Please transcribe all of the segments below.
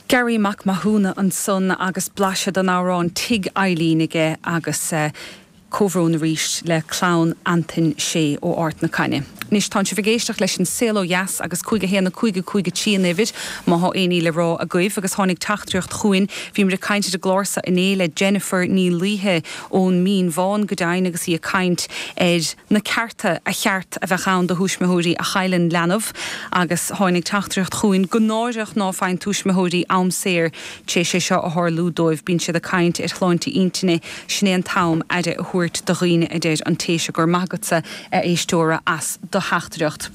Garry Mac Mathúna ansan agus blaiseadh den amhrán Tigh Eilín aige agus comhbhrón arís le clann Antoin Shea ó Ard na Caithne. Anois tánn sibh ag éisteacht leis an Saol Ó Dheas agus cúig a haon a cúig a cúig a trí an uimhir má thá aon ní le rá agaibh agus tháinig teachtaireacht chugainn, bhíomar ag caint ar an gclár seo inné le Jennifer Ní Laoithe ón Mín Bhán, go deimhin, agus í ag caint ar. na cearta a cheart a bheith ann do thuismitheoirí a chailleann leanbh agus tháinig teachtaireacht chugainn gur náireach ná faigheann tuismitheoirí am saor tar éis é seo a tharlú dóibh, bíonn siad ag caint ar shláinte intinne, sin é an t-am aire a thabhairt do dhaoine a deir an té seo, go raibh maith agatsa a éisteoir as do theachtaireacht.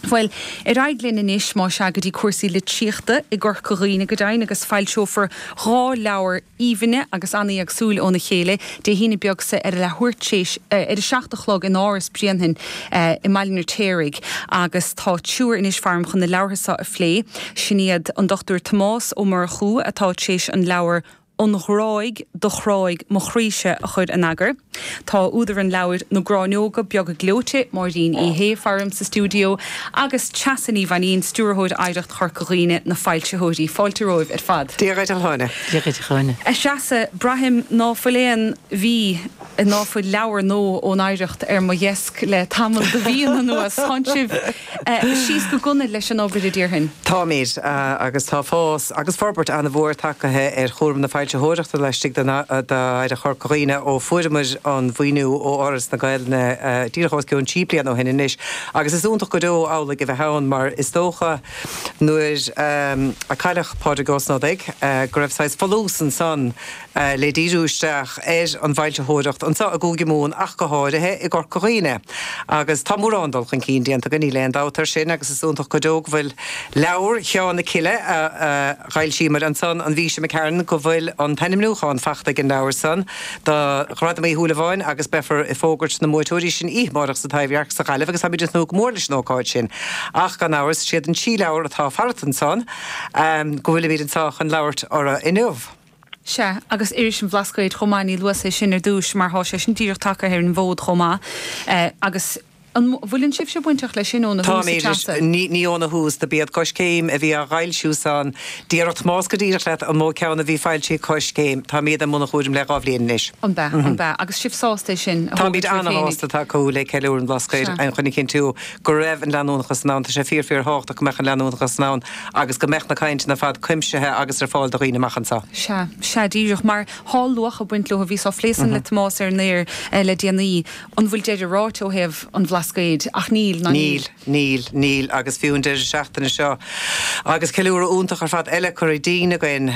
Bhuel, ar aghaidh linn anois, má sea, go dtí cúrsaí litríochta i gCorca Dhuibhne, go deimhin, agus foilseofar dhá leabhar aoibhinne agus an-éagsúil óna chéile Dé hAoine beag so ar a leathuair théis a seacht a chlog in Áras Bhréanainn i mBaile an Fheirtéaraigh agus tá triúr anois faram chun na leabhartha so a phlé, sin iad an Dr Tomás Ó Murchú atá tréis an leabhar an ghráig do chráigh mo chroíse a chur in eagar. Tá údar an leabhair, Na Gráinneoga Beaga Gleoite, Máirín Uí Shé, faram sa stiúideo agus Treasa Ní Mhainín, stiúrthóir Oidhreacht Chorca Dhuibhne, na foilsitheoirí. Fáilte romhaibh ar fad. Dia dhaoibh a Threasa, braithim ná fuil aon mhí. ná fuil leabhar nua ón Oidhreacht ar mo dheasc le tamall de mhíonna anuas. Tánn sibh síos go gunail leis an obair a déarfainn. Táimid, agus tá fás agus forbairt an-mhór tagtha ar chúram na foilsitheoireachta laistigh d'Oidhreacht Chorca Dhuibhne ó fuaireamar an mhaoiniú ó Fhoras na Gaeilge díreach os cionn trí bliana ó shin anois agus is iontach go deo amhlaidh a bheith ann mar is dócha nuair a cailleadh Pádraig Ó Snodaigh go raibh saghas folús ansan le díriú isteach ar an bhfoilsitheoireacht anso i gCúige Mumhan ach go háirithe i gCorca Dhuibhne. Agus tá mórán dul chun cinn déanta againn, níl aon dabht air sin, agus is iontach go deo go bhfuil leabhar Sheáin na Cille, a d'fhoilsíomar ansan an mhí seo d'imigh tharainn, go bhfuil an t-ainmniúchán fachta ag an leabhar san do Ghradam Uí Shúilleabháin agus beifear ag fógairt na mbuaiteoirí sin oíche amárach sa Taibhdhearc sa Ghaillimh agus táimid ag tnúth go mór leis an ócáid sin. Ach gan amhras, is iad an trí leabhar atá farat ansan go bhfuilimid anso chun labhairt orthu inniu. Sea, agus iris an Bhlascaoid chomh maith, níor luas é sin ar dtúis, mar thá sé sin díreach tagtha ar an bhfód chomh maith, agus an bhfuileann sibhse bainteach leis sin óna thús, a Threasa? Táimid, ní, ní óna thús, do b'iad Coiscéim a bhí á dh'fhoilsiú san, díreach, más go díreach leat an mó ceann a bhí foilsithe ag Coiscéim, táimid, i mbun an chúraim le dhá bhliain anois. An b'ea, an b'ea, agus sibh sásta é sin a thógaint oraibh féinig? Táimid ana-shásta tacú le ceiliúradh an Bhlascaoid, Sea. chun a chinntiú go raibh an leanúnachas san ann, tá sé fíor, fíor thábhachtach go mbeadh an leanúnachas san ann, agus go mbeadh na cainteanna ar fad cuimsithe agus ar fáil do dhaoine amach anseo. Sea, sea, díreach mar thá luach ag baint leo bhíos á phlé san le Tomás ar an aer le déanaí. An bhfuil deireadh ráite ó thaobh an Bhlascaoid? Ach níl, ná níl. Níl, níl, níl, agus fiú an deireadh seachtaine seo agus ceiliúradh iontach ar fad eile curtha dínn againn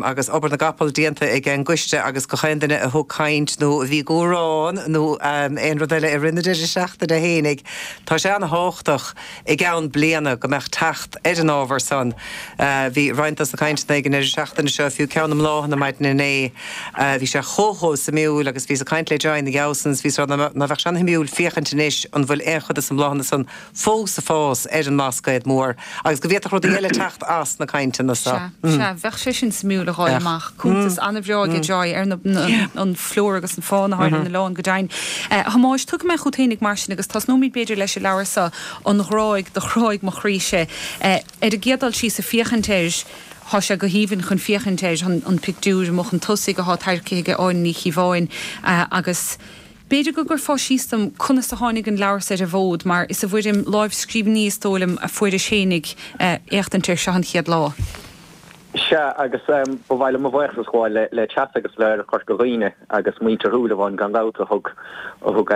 agus obair na gcapall déanta ag an gcoiste agus gach aon duine a thug caint nó a bhí ag amhrán nó aon rud eile i rith na deireadh seachtaine fhéinig, tá sé an-tábhachtach. i gceann bliana, go mbeadh teacht ar an ábhar san. Bhí roinnt dos na cainteanna ag an ndeireadh seachtaine seo, fiú ceann na mbláthanna maidin inné. Bhí sé chomh, chomh suimiúil agus bhíos ag caint le Joy ina dhiaidh san is, bhíos a rá ná beadh sé an-shuimiúil féachaint anois an bhfuil aon chuid dos na mbláthanna san fós ag fás ar an mBlascaod Mór agus go bhféadfadh rudaí eile teacht as na cainteanna so. Sea, sea, bheadh sé sin suimiúil a dh'fháil amach. Cuntas ana-bhreá aige Joy ar na, an, flóra agus an fána, thá ar na hoileáin go deimhin. A Thomáis, tiocfaidh mé chút fhéinig mar sin, agus tosnóimid b'fhéidir leis an leabhar so, An Ghráig do Chráigh mo Chroí-se. Ar an gcéad dul síos, ag féachaint air, thá sé go haoibhinn chun féachaint air, an an pictiúir amuigh chun tosaigh athá tarraicthe aige Áine Ní Chíobháin, agus b'fhéidir go gcuirfeá síos dom conas a tháinig an leabhar so ar an bhfód, mar is i bhfoirm láimhscríbhinní, is dóigh liom, a fuairis fhéinig éachtaint air, seo an chéad lá. Sea, agus ba mhaith liom mo bhuíochas a ghabháil le Tess agus le Corca Dhuibhne agus muintir Shúilleabháin gan dabht a thug, a thug,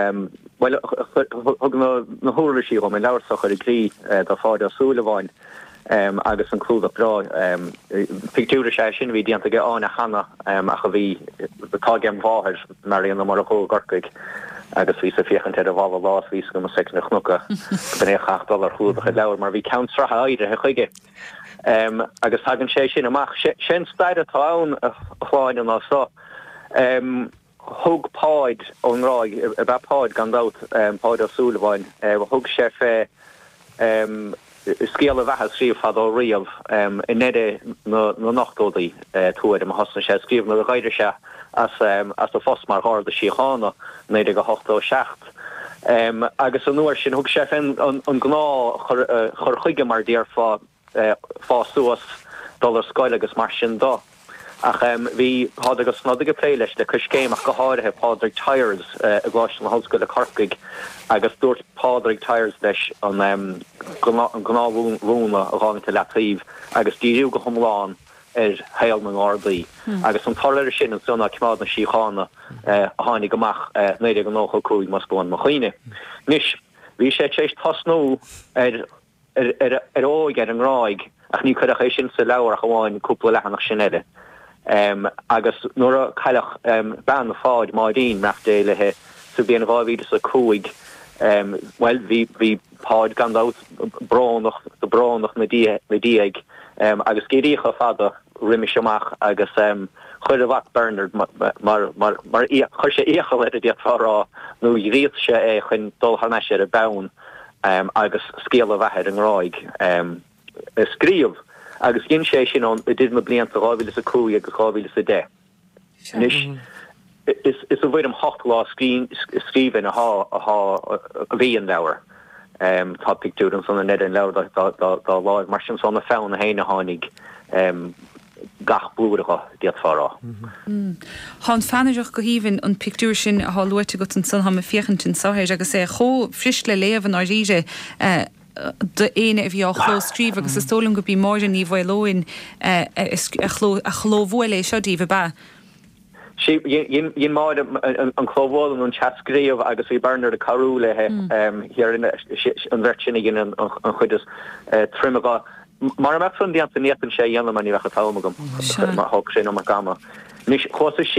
bhuel, a thug na huirlisí dhom, an leabhar so a chur i gcrích do Pháid Ó Súilleabháin agus an clúdach breá, pictiúr is ea é sin a bhí déanta ag Áine cheana ach a bhí, atá age m' mháthair Marian Ó Murchú i gCorcaigh agus bhíos ag féachaint air ar an bhfalla lá is bhí a fhios agam ón soicind a chonac é go mbeadh sé ag dul ar chlúdach an leabhair mar bhí ceann sraithe áirithe chuige. Agus tagann sé sin amach. Sé an stair atá ann, a Shláine, ná seo. Thug Páid ón nGráig, ab ea Páid gan dabht, Páid Ó Súilleabháin, thug sé fé scéal a bheatha a scríobh fadó riamh, i ndeireadh na n-ochtódaí tuairim a thosnaigh sé ag scríobh nuair a dh'éirigh sé as a phost mar Gharda Síochána, 1987. Acht. Agus an uair sin, thug sé fé an gnáth chur chuige mar déarfá, fás suas, dul ar scoil agus mar sin de. Ach bhí Pádraig Ó Snodaigh ag plé leis le Coiscéim ach go háirithe Pádraig Tyers i gColáiste na hOllscoile Corcaigh agus dúirt Pádraig Tyers leis an gnáth mhúnla a chaitheamh i leataoibh agus díriú go hiomlán ar shaol na nGardaí agus an toradh air sin ansan ná Coimeád na Síochána a tháinig amach 1995, más buan mo chuimhne. Anois, bhí sé tar éis tosnú ar a óige ar an nGráig ach ní cuireadh é sin sa leabhar ach amháin cúpla leathanach sin eile agus nuair a cailleadh bean Pháid, Máirín, beannacht Dé léi, sa bhliain 2005, bhuel, bhí. Páid, gan dabht, brónach, brónach ina diaidh agus geimhríocha fada roimis amach agus chuir a mhac Bernard mar, chuir sé iachall air a d'fhéadfá a rá nó ghríosaigh sé é chun dul thar n-ais ar an bpeann agus scéal a bheatha ar an nGráig a scríobh agus dhein sé é sin ann idir na blianta 2005 agus 2010. Anois, is i bhfoirm ocht lámhscríbhinn a bhí an leabhar. Tá pictiúr ansan i ndeireadh an leabhair dá láimh, mar sin, is óna pheann féin a tháinig gach blúire dhe, d'fhéadfá a rá. Tá an pheannaireacht go haoibhinn, an pictiúr sin atá luaite agat ansan, táim ag féachaint anso air agus é chomh fuirist le léamh i ndáiríre. do éinne a bhí á chlóscríobh agus is dóigh liom gurb í Máire Ní Mhaoleoin a chlóbhuail é seo daoibh, ab ea? Sea, dhein Máire an clóbhualadh nó an teascríobh agus bhí Bernard ag cabhrú léi, an bheirt sin a dhein an chuid is troime dhe. Mara mbeadh san déanta ní fhéadfainnse é a dhéanamh mar ní bheadh an t-am agam, thógfadh sé an iomarca ama. Anois, chuas síos.